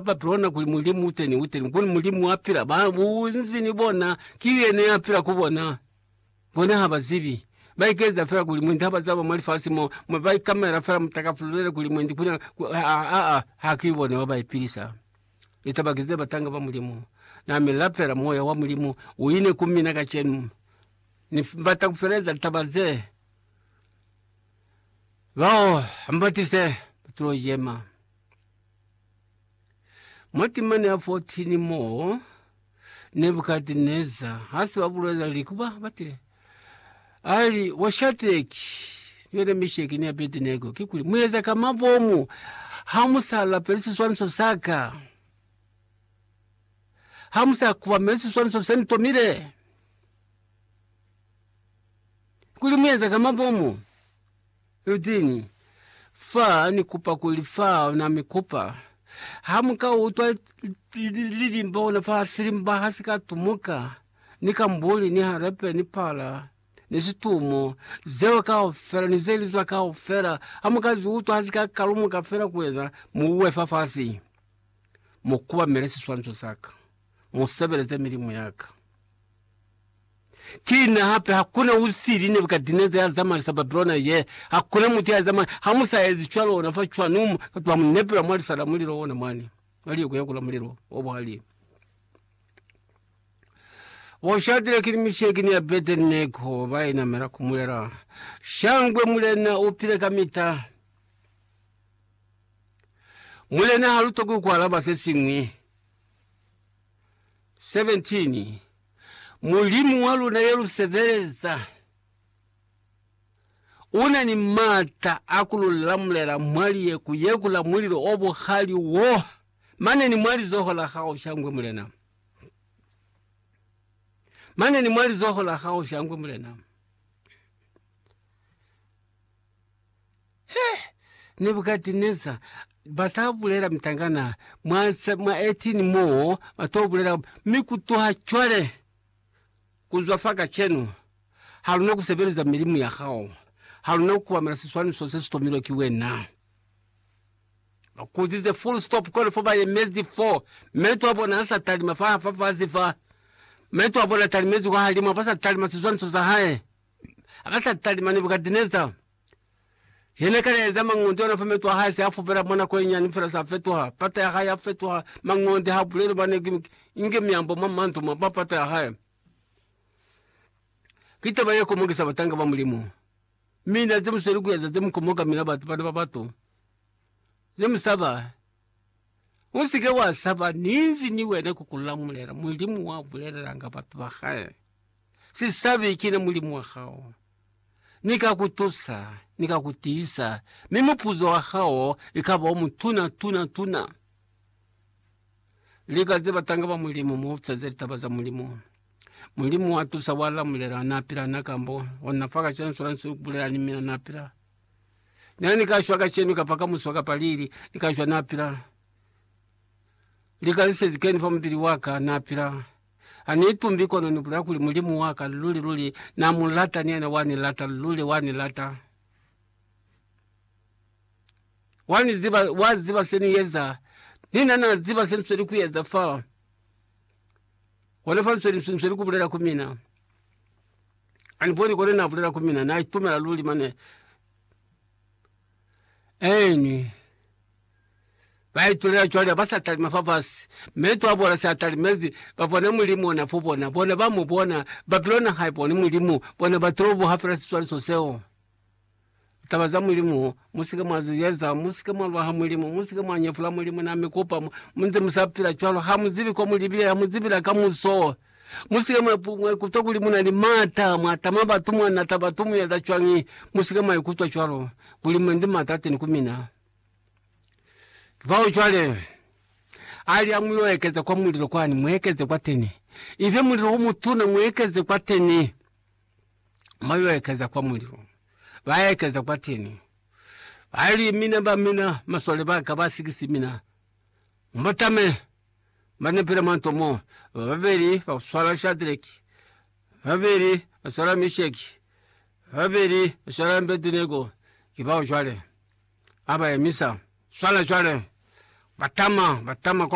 Babilona kuli mulimu uteni uteni kuli mulimu wa pila ba bunzi ni bona ki yene ya pila ku bona bona ha ba zibi ba ikeza fela kuli mwendi ha ba zaba mwa lifasi mo mo ba ikamela fela mutakafululele kuli mwendi kuna a a ha ki bona wa ba ipilisa litaba kize batanga ba mulimu na me lapela moya wa mulimu uine ku mina ka chenu ni bata kufeleza litaba ze bao ambatise tulo jema. Mwa timana ya 14 moo, Nebukadneza hasi babulela li kuba batile, ali, Wa Shadraki, niwena Meshaki ni Abednego, kikuli mueza ka mabomu hamusalapeli siswaniso saka, hamusakubameli siswaniso senitomile? Kuli mueza ka mabomu? Eugene, Fa ni kupa kuli fa na mi kupa, ha mu ka utwa lilimba ona fa silimba ha si ka tumuka, ni kambuli, ni harepe, ni pala, ni situmo, zeo kaufela, ni ze li zwa kaufela, ha mu ka zi utwa ha si ka kalumuka fela kueza, mu uwe fafasi, mu kubamele siswanso sa ka. mu sebeleze milimu ya ka. Ki na hape, hakuna usili Nebukadineza ya zamalisa Babilona ye, hakuna mutu ya zamalisa. Ha mu sa ezi cwalo, ona fa cwanu batu ba mu nepela mwa lisa la mulilo ona mwani, mwa lieko ya kula mulilo o buhali. Bo Shadraki ni Misheki ni Abednego ba inamela ku mulela, Shangwe Mulena u pile kamita! Mulena ha lutokwi ku alaba se siñwi. 17 Mulimu wa luna ye lu sebeleza u na ni m'ata a ku lu lamulela mwa liye ku yekula mulilo o buhali wo, mane ni mwa lizoho la hao shangwe mulena, mane ni mwa lizoho la hao shangwe mulena. He! Nebukadineza ba sa bulela mitangana mwa, mwa 18 mo ba to bulela, mi kutuha cwale, kuzwa fa kacenu, ha luna ku sebeleza milimu ya hao, ha luna ku kubamela siswaniso se si tomilwe ki wena. Ba kuzize full stop kona fo ba yemezi fo, meto a bona a sa talima fa, fa fasi fa, meto a bona talimezi kwa halima, ba sa talima siswaniso sa hae. Ka sa talima, Nebukadineza ye ne kale ya eza mangonde ona fa meto a hae se a fubela mwa nako ye nyani fela sa fetuha. Pata ya hae ya fetuha mangonde ha buleli ba ne inge miambo mwa mandu mwa mwa pata ya hae. Ki taba ye komokisa batanga ba Mulimu, mi na ze mu sweli ku eza ze mu komoka mina batu bana ba batu ze mu saba. Usike wa saba, ninzi ni wena ku kulamulela. Mulimu wa bulelelanga batu ba hae, Si sabi, kina Mulimu wa hao. Ni ka ku tusa, ni ka ku tiisa, mi mupuzo wa hao ikaba o mutuna tuna tuna. Lika ze batanga ba Mulimu, mu ofisa ze litaba za Mulimu. Mulimu wa tusa, wa lamulela, na pila na kambo ona fa kacenu, swana nsi ku bulela ni mina, na pila. Nena ni ka shwa kacenu kapa ka muswa kapa lili, ni ka shwa na pila. Lika lisezi keni fa mubili waka, na pila. Ha ni itumbi kono ni bulela kuli Mulimu waka luli luli na mu lata, ni yena wa ni lata, luli wa ni lata. Wa ni ziba, wa ziba se ni eza, ni na na ziba se nisweli ku eza fa. Hona fa nisweli, nisweli ku bulela ku mina. Ani boni kone na bulela ku mina, na itumela luli mane Eni ba itulela cwale, ba sa talima fa fasi, meto a bona sa talimezi, ba bona Mulimu ona fo bona, bona ba mu bona, Babilona ha iboni Mulimu, bona batoloboha fela siswaliso seo. Taba za Mulimu, Musike mwa zi yeza, musike mwa lwa ha Mulimu, musike mwa nyefula Mulimu na mi kupa, mu nze mu sa pila cwalo, ha mu zibi ko mu libile, ha mu zibi la kamuso. Musike mwa ikutwa kuli mu na ni mata, mwa tama batu, mwa nata batu, mu yeza cwañi, musike mwa ikutwa cwalo, kuli mu ndi mata teni ku mina. Kibao cwale, ali ha mu yo ekeza kwa mulilo kwani, mu ekeze kwateni. Ife mulilo o mutuna, mu ekeze kwateni. mwa yo ekeza kwa mulilo, ba ekeza kwa teni, ba li, Mina ba mina, masole ba ka ba sikisi mina, mbo tame ba nepele mwa nto mo, ba babeli ba swala Shadraki, ba babeli ba swala Misheki, ba babeli ba swala Abedinego, ki bao jwale. A ba emisa, swala jwale, ba tama, ba tama kwa